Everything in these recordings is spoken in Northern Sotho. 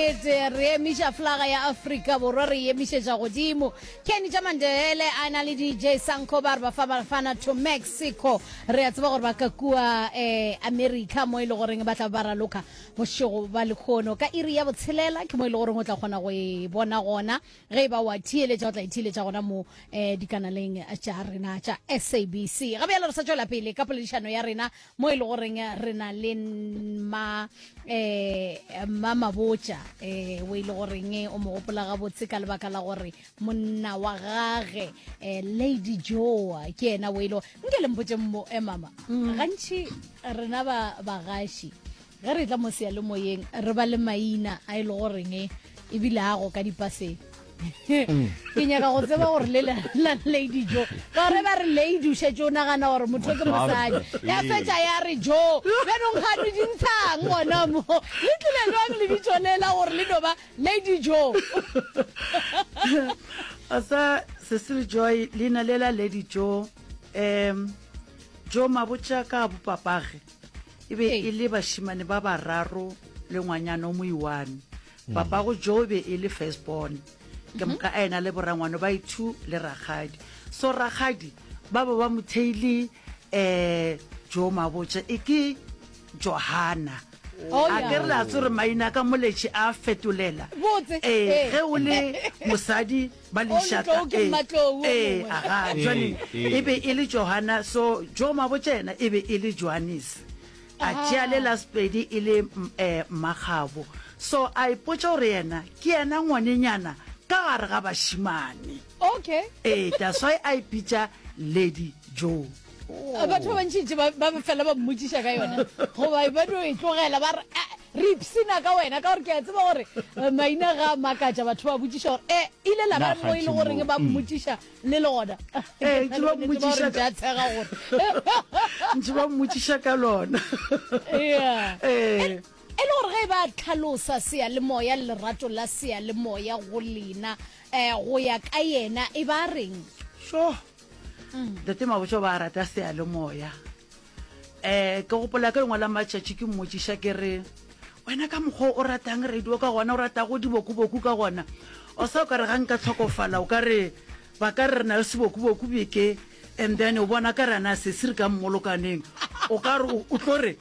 Ete re emiša flaga ya Afrika Borwa re emišetša godimo. Kenny tša Mandebele a na le DJ Sanko ba re ba fa Bafana to Mexico. Re a tseba gore ba ka kua eh, America mo e le goreng ba tla ba raloka bošego ba lekhono. Ka iri ya botshelela ke mo e le goreng o tla kgona go e bona gona ge e ba wa theeletša o tla e theeletša gona mo eh, dikanaleng tša rena tša SABC. Ga bjalo re sa tšwela pele ka poledišano ya rena mo e le goreng re na le ma um ma mabotša um o e le goreng o mo gopola gabotse ka lebaka la gore monna wa gage um lady joa ke ena o e le nke le mpotse mo emama mm. gantši rena bagaši ba ge re tla mo seyalemoyeng re ba le maina a e le goreng ebile a go ka dipaseng mm. ke nyaka go tseba gore le la lady jo ka gore ba re lady o šetse o nagana gore motho ke mosadi ya fetsa ya re jo bjanong ga le dintshang gona mo le tlile jwang le bitšolela gore le no ba lady jo asa cecil joy leina le la lady jo um jo mabotša ka bopapage e be e le bašimane ba bararo le ngwanyana o moiwane mm. papago jo be e le first born ke moka a ena le borangwane ba ithu le rakgadi so rakgadi ba ba ba motheile um jo mabotša e ke johana oh, a ke re le a tsore maina ka moletše a fetolela ee ge o le mosadi ba lešata ee aga jwane e be e le johana so jo mabo tšena e be e le johannes a tšea le last pedi e le um mmakgabo so a ipotsa gore yena ke yena ngwanenyana ka gare ga bashimane okay ee that's why a ipitsa lady joe batho ba bantšintši ba fela ba mmotsiša ka yona goba ba no e tlogela ba eh, re ipsina ka wena ka gore ke a tseba gore eh, maina ga makatša batho ba botsiša gore e eh, ile la ba mo e le goreng ba mm. mmotsiša le lona ntse ba mmotsiša ka lona e le gore ge e ba tlhalosa sea le moya le lerato la sea le moya go lena um go ya ka yena e ba reng sure Ntate Mabotja o ba rata seyalemoya. Um ke gopola ka lengwe la matšatši ke mmotšiša ke re wena ka mokgwa o ratang radio ka gona o ratago dibokuboku ka gona o sa o ka re ga nka tlhokofala o ka re ba ka re re na le sebokuboku beke and then o bona ka rana sesiri ka mmolokaneng o ka re o tlo re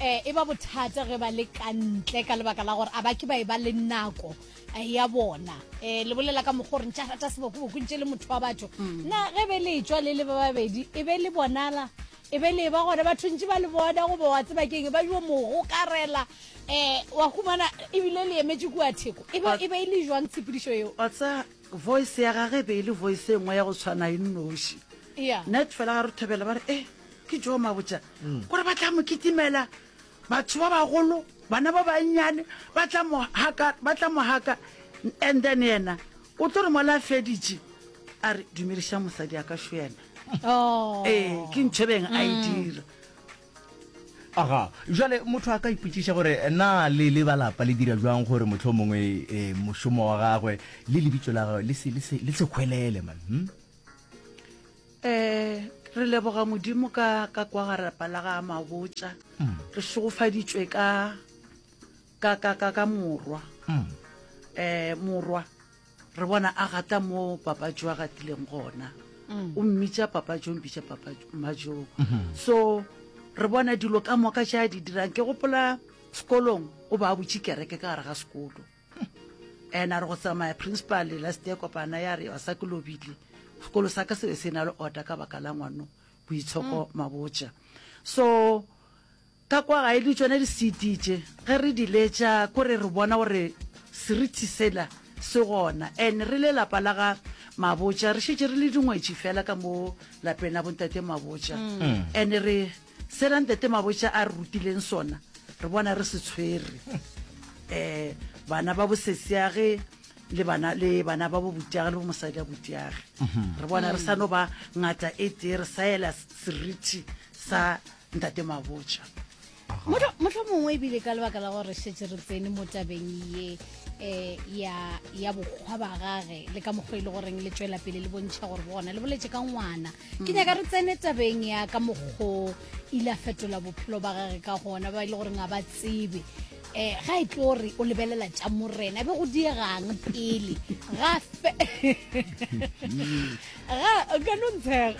um e ba bothata ge ba le ka ntle ka lebaka la gore a ba ke ba e ba le nako eh, ya bona um le bolela ka mokgwa gore ntša rata sebokoboko ntše le motho wa batho mm. na ge be le tswa le le ba babedi e be le bonala e be le ba gona batho ntše ba le bona goba wa tseba keng e ba jo mogo karela um wa humana ebile le emetse kua theko e be e, e le jwang tshepedišo eo watsa voice ya gage e be e le voice e nngwe ya go tshwana e nnoši net fela ga re thobela ba re e eh, ke joo mabotša gore ba tla mo kitimela batho ba bagolo bana ba bannyane ba tla mo haka ba tla mo haka and then yena o tlo re mola a feditše a re dumediša mosadi a ka šo yena Oh. ee ke ntho e beng a e dira aga jale motho a ka ipotšiša gore na le le ba lapa le dira jwang gore motlho mongwe um mošomo wa gagwe le lebitso la gagwe le se- le se- le se kgwelele man hmm? Eh, re leboga modimo ka ka kwa garapa la ga mabotša mm. re šegofaditšwe ka ka ka ka ka morwa mm. eh morwa re bona a gata mo papatso a gatileng gona mm. o mmitša papatso o mmitša papatso majong mm-hmm. so re bona dilo ka moka tša di dirang ke gopola sekolong o ba butše kereke ka gare ga sekolo and a re go tsamaya principal last year kopana ya re sa ke lobile sekolo sa ka se be se na le order ka baka la ngwano boitshoko mm. mabotša so ka kwa ga e le tsone di-cd tše ge re di letša kore re bona gore seriti sela se gona and re le lapa la ga mabotša re šetse re le dingwetši fela ka mo lapeng la bontate mabotša mm. and re Se Rantate Mabotja a re rutileng sona re bona re se tshwere, um bana ba bosesiage le bana le bana ba bo butiage le bo mosadi a butiage re bona re sa no ba ngata e tee re sa ela seriti sa Ntate Mabotja. Mohlho- mohlomongwe ebile ka lebaka la gore re šetše re tsene mo tabeng ye um ya ya bokgwa ba gage le ka mokgwa e le goreng le tšwela pele le bontšha gore bona le boletše ka ngwana ke nyaka re tsene tabeng ya ka mokgo ile a fetola bophelo ba gage ka gona ba e le goreng a ba tsebe um ga e tlo re o lebelela tša morena be go diegang pele ga ka no ntshega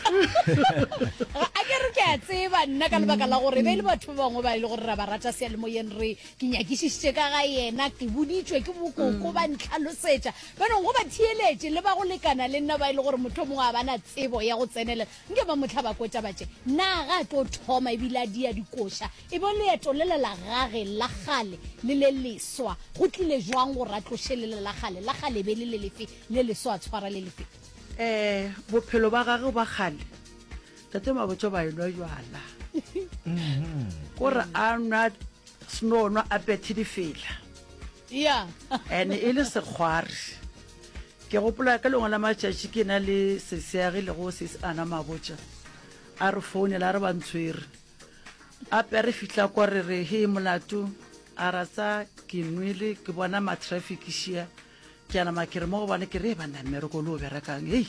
a ke re ke a tseba nna ka lebaka la gore be le batho ba bangwe ba e le gore ra ba rata sealemoyeng re ke nyakišišitše ka ga yena ke boditswe ke bokoko ba ntlhalosetša Jaanong go batheeletše le ba go lekana le nna ba e le gore mohlomongwe ga ba na tsebo ya go tsenelela, nke ba mo hlaba kotša ba tše, Na ga a tlo thoma e bile a dia dikoša? E bo leeto lela la gage la kgale le le leswa go tlile bjang gore a tloše lela la kgale la kgale e be e le le lefe le leswa a tshwara le lefe? Ee, bophelo ba gagwe ba kgale Tate Mabotja ba enwa jwala. Ko re a nwa snono a phethe difela. e ne e le sekgwari. Ke gopola ka lengwe la matšatši ke na le seseagi le go sesi ana mabotša a re founela a re ba ntshwere a pe re fihla kwa re re he molato a ra tsa ke nwele ke bona matraffic šia ke a nama ke re mo gobane ke re ba nna mmereko le o berekang hei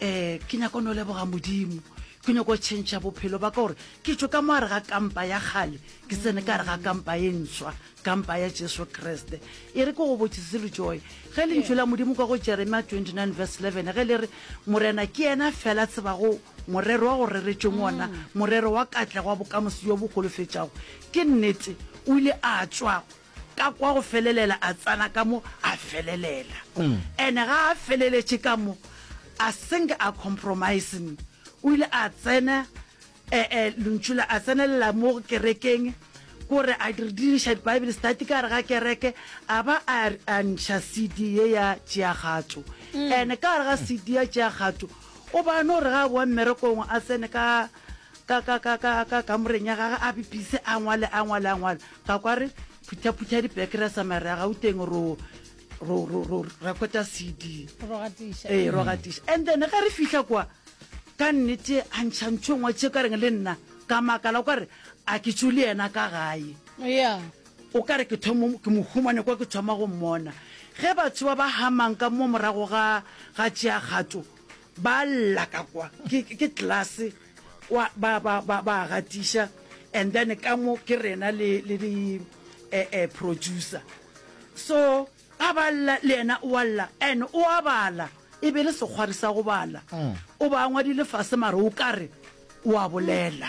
um ke nyaka o ne o leboga modimo ke nyako tšhentšha bophelo ba ka gore ke tšo ka moare ga kampa ya kgale ke tsene ka re ga kampa e ntshwa kampa ya jesu kriste e re ke go botsise le joy ge le ntšho la modimo ka go jeremia 29 verse 11 ge le re morena ke yena fela tseba go morero wa go reretšweng ona mm. morero wa katlego wa bokamoso jo bo golofetšago ke nnete o ile a tswa ka kwa go felelela a tsana ka mo a felelela ene ga a feleletše ka mo a seng a compromising o ile a tsena eh, eh, lontšu la a tsenelela mo kerekeng kore a di- diriša bible study ka re ga kereke a ba a a ntšha cd ye ya tšeagatšo ene ka re ga cd ya tšeagatšo o ba no re ga a boa mmerekong a tsene ka ka ka ka ka ka kamoreng ya gage a bipise a ngwale a ngwale a ngwale ka kwa re phuthaphutha dipeke ra tsamaya re ya gauteng ro ro ro ro rekota cd ro gatiša ee ro gatiša and then ge re fihla kwa ka nnete a ntšha ntho e ngwe tše ka reng le nna ka makala o ka re a ke tso le yena ka gae ya o ka re ke thomo ke mo humane kwa ke thoma go mmona ge batho ba ba hamang ka mo morago ga ga tšea kgato Ba lla ka kwa ke, ke tlase kwa, ba, ba, ba, ba gatiša, and then ka mo ke rena le, le di eh, eh, producer. So ga ba lla le yena o a lla and o a bala, e be le sekgwari sa go bala, o ba ngwadile fase mara o kare o a bolela.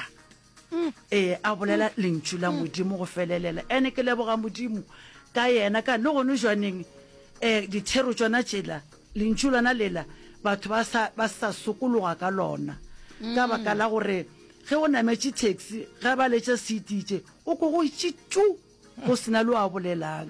Ee, a bolela lentšu la Modimo go felelela. Ene ke leboga Modimo ka yena ka le gone jwaneng um dithero tšona tšela lentšu lona lela batho ba sa ba sa sokologa ka lona ka baka la gore ge o nametše taxi ge ba letša seatitše o ko go itše tu go sena le wa bolelang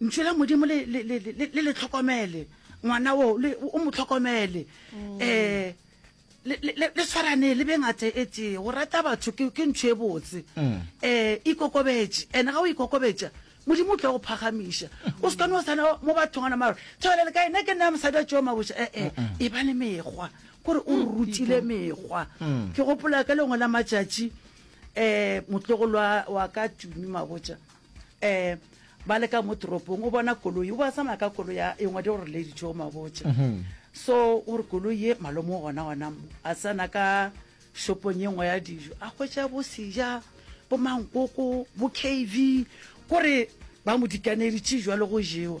ntšho la modimo le le tlhokomele ngwana o o mo tlhokomele um le tshwarane le bengate e tee go rata batho ke ntšho e botse um ikokobetse and-e ga o ikokobetsa modimo o tla go phagamiša o sekane o sana mo bathong ana maro tshwele le kae ne ke nna mosadi wa tšeo maboša ee e ba le mekgwa kore o rutile mekgwa ke gopola ka lengwe la matšatši um motlogolwa wa ka tumi maboša eh ba le ka mo toropong o bona koloi o ba tsamaya ka koloi ya e ngwadi gore lady jo mabotse mhm. so o re koloi ye malomo gona gona mo a tsena ka shopong ye nngwe ya dijo a hwetša bo seja bo mankoko bo kv kore ba mo dikaneditše jwa le go jewa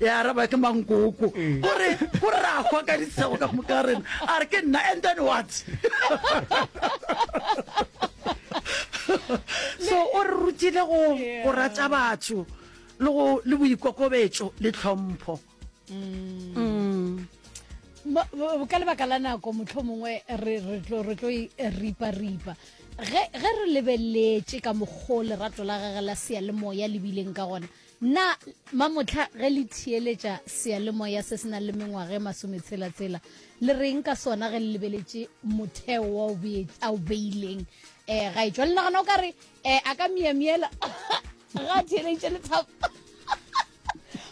ya araba ke mankoko o re o rakgwa ka ditshego ka moka ga rena a re ke nna and then what so o re rutile go go rata batho le go le boikokobetso le tlhompho Mm. Ba- ba- ka lebaka la nako motlho mongwe re re tlo re tlo e ripa-ripa ge ge re lebeletse ka mokgo lerato la gage la seyalemoya le bileng ka gona Na mamohla ge le theeletša seyalemoya se se nang le mengwaga e masometshela-tshela, le re'ng ka sona ge le lebeletše motheo wa boeti a o beileng? Um gaetšwa, le nagana o ka re um a ka miamiela ge a theeleditše lethabo?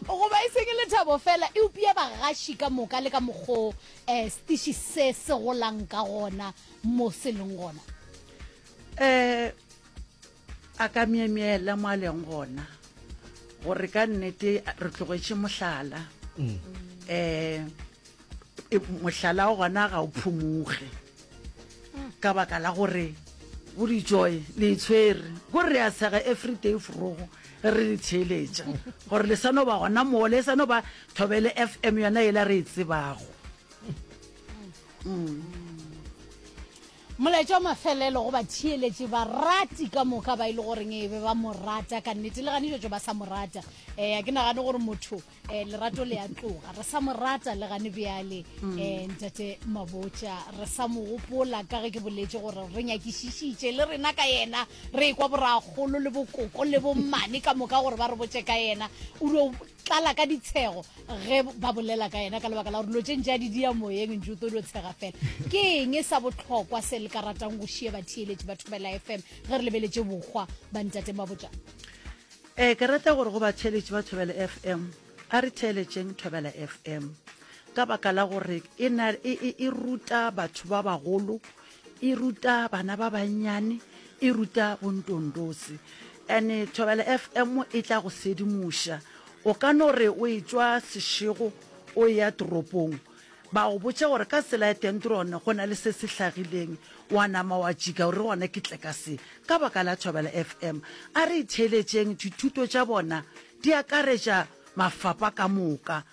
Goba e seng lethabo feela, eupša bagaši ka moka le ka mokgwa o um setiši se se golang ka gona mo se leng gona? Um A ka myemyela mo a leng gona gore ka nnete re tlogetše mohlala um mohlala o gona ga o phumuge ka baka la gore bo dijoy le itshwere ko re ya sega everyday forogo ge re le theeletša gore le sa no ba gona moo le sa no ba thobele f m yona e la re e tsebago um Molaetša wa mafelelo go batheeletši, barati ka moka ba e le goreng e be ba mo rata ka nnete, le gane tšotšo ba sa mo rata. Eh, a ke nagane gore motho eh, lerato le a tloga, re sa mo rata le gane bjale. Mm. Eh, ntate Mabotša, re sa mo gopola ka ge ke boletše gore re nyakišišitše le rena ka yena, re e kwa boragolo le bokoko le bommane ka moka gore ba re botše ka yena. O dio tlala ka ditshego ge ba bolela ka yena ka lebaka la gore lo tše ntše a di dia moyeng ntse o tlo di o tshega fela ke eng e sa botlhokwa se le ka ratang go šie batheeletši ba thobela fm ge re lebeletše bokgwa ba ntate mabotša ee ke rata gore go batheeletši ba thobela fm a re theeletšeng thobela fm ka baka la gore e, e, e, e ruta batho ba bagolo e ruta bana ba bannyane e ruta bontondosi ande thobela fm e tla go sedimoša o ka no re o e tswa sešego o ya toropong ba go botša gore ka tsela ya tentrone go na le se se hlagileng wa nama wa tšika gore gona ke tle ka se ka baka la thobela fm a re itheeletšeng dithuto tša bona di akaretša mafapa ka moka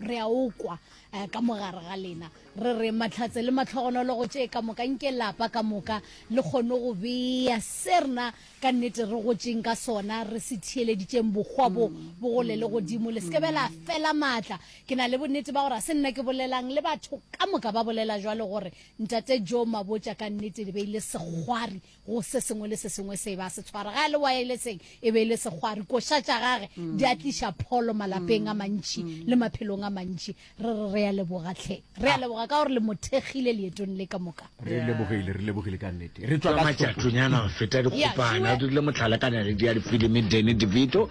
Re a o kwa eh, ka mogare ga lena. Re re mahlatse le mahlogonologo tše ka moka nke lapa ka moka le kgone go bea se rena ka nnete re gotšeng ka sona re se theeleditšeng bokgwa bo mm. bo gole le godimo le seke bela mm. fela maatla. Ke na le bonnete ba gore ga se nna ke bolelang le batho ka moka ba bolela jwalo gore ntate Jo Mabotša ka nnete le beile segwari go se sengwe le se sengwe se ba se tshwara ga le waeleseng e be e le segwari koša tša gage di a tliša pholo malapeng a mm. mantši mm. le maphelong a mantši re re re a leboga tlhe re a ah. leboga ka gore le mothekgile leetong le ka moka re lebogile re lebogile ka nnete re tswa ka matšatonyana go feta dikgopana o dirile motlhalakanyane di ya difilimi dene devito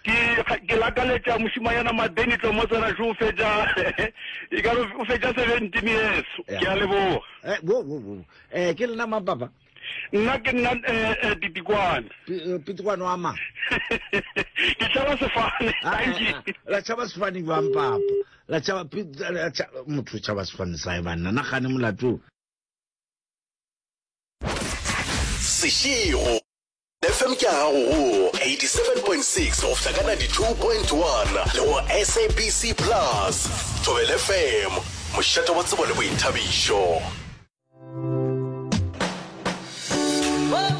Ke, ke lakaletša mošemanyana Madeni Tlomotsena xo o fetša, e ka re o fetša seventeen years. Ke a leboga. Eh, wo, wo, wo. Eh, ke lena mang papa? Nna ke nna eh, eh, Pitikwane. Pi- eh, Pitikwane wa mang? Ke tšhaba sefane. Ah, ah, Thank you. ah, la tšhaba sefane jwang papa la tšhaba pi- la tša- motho o tšhaba sefane sae banna na gane molato Seširo. FM ke ya gago go 87.6 go fihla ka 92.1 le go sabc plus thobel fm mošate wa tsebo le boithabišo